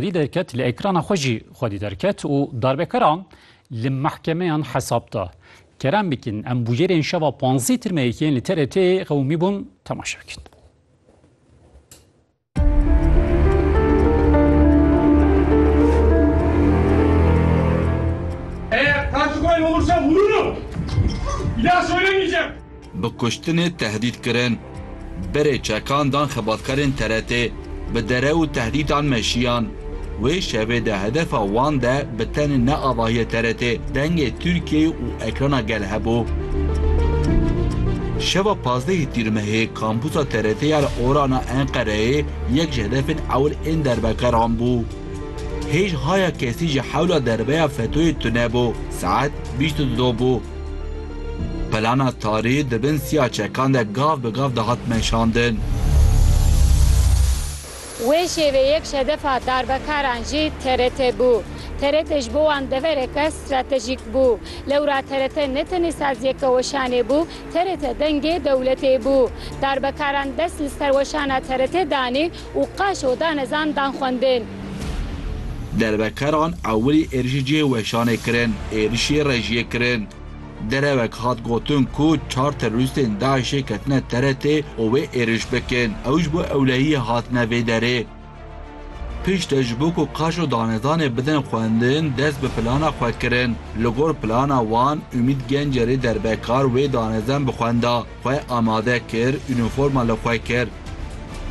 Vî derket li ekrana xwe jî xwedî derket û darbekaran li mehkemeyan hesab da. Kerem bikin em bûyerên şeva panzdeh tirmeyekî yên li TRT'ê qewimîbûn temaşe bikin. bi kuştinê tehdît kirin. Berê çekan dan xebatkarên TRT'ê bi dere û tehdîtan meşiyan. Wê şevê de hedefa wan de bi tenê ne avahiyê TRT'ê, dengê Tirkiyeyê û ekrana gel hebû. Şeva pazdehê Tîrmehê kampusa TRT'ê ya li Orana Enqereyê yek ji hedefên ewil ên derbekaran bû. Hêj haya kesî ji hewla derbeya fetoyê tune bû. Saet bîst û du bû. Pelana tarî di bin siya çekan de gav bi gav dihat meşandin. Wê şêveyek şedefa darbekaran jî TRT bû. TRT ji bo wan devereke stratejîk bû. Lewra TRT ne tenê saziyeke weşanê bû, TRT dengê dewletê bû. Darbekaran dest li ser weşana TRT danê, Û qeş û danezan dan xwendên. Dervekeran ewilî êrişî cihê weşanê kirin, êrişî rejiyê kirin. Derewek hat gotin ku çar terorîstên DAIŞ'ê ketine TRT'ê û wê êriş bikin, ew ji bo ewlehiyê hatine vê derê. Piştre ji bo ku qeş û danezanê bidin xwendin dest bi plana xwe kirin. Li gor plana wan Umît Gencerê derbekar wê danezan bi xwenda. Xwe amade kir, unîforma li xwe kir.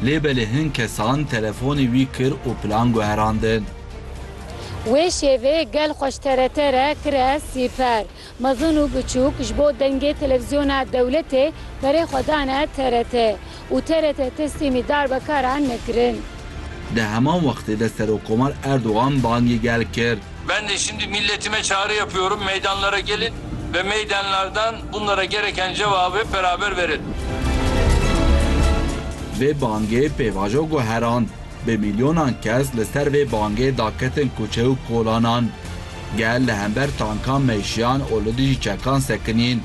Lê belê hin kesan telefonê wî kir û plan guherandin. Wê şevê gel xweş TRT re kire sîper. Mezin û biçûk ji bo dengê televîzyona dewletê berê xwe dane TRT û TRT teslîmî darbekaran nekirin. Di heman wextê de Serokkomar Erdogan bangê gel kir. Ben de şimdi milletime çağrı yapıyorum, meydanlara gelin ve meydanlardan bunlara gereken cevabı beraber verelim. Vê bangê pêvajo guherand. Bi milyonan kes li ser vê bangê da ketin kuçe û kolanan. Gel li hember tankan meşiyan û li dijî çekan sekinîn.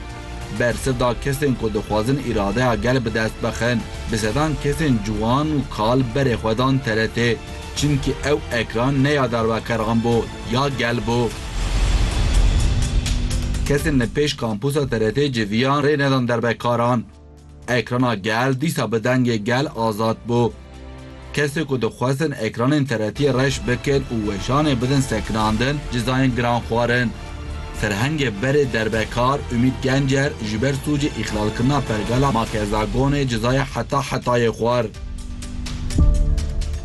Bersiv da kesên ku dixwazin îradeya gel bi dest bixin. Bi sedan kesên ciwan û kal berê xwe dan TRT'ê. Çimkî ew ekran ne ya dervekerxan bû ya gel bû. Kesên li pêş kampusa TRT'ê civiyan rê nedan dervekaran. Ekrana gel dîsa bi dengê gel azad bû. Kesê ku dixwestin ekranên TRT'ê reş bikin û weşanê bidin sekinandin cizayên giran xwarin. Serhengê berê derbekar Umît Gencer ji ber sûcê îxlalkirina pergala Makezagonê cezaya heta hetayê xwar.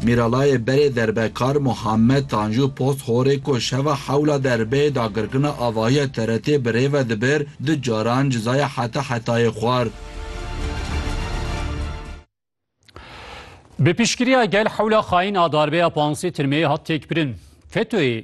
Mîralayê berê derbekar Muhammed Tanju Posthorê ku şeva hewla derbeyê dagirkirina avahiya TRT'ê bi rê ve dibir, du caran cezaya heta hetayê xwar. Bi piştgiriya gel hewla xayin a darbeya pansê tirmeyê hat têkbirin. FETÖ'yê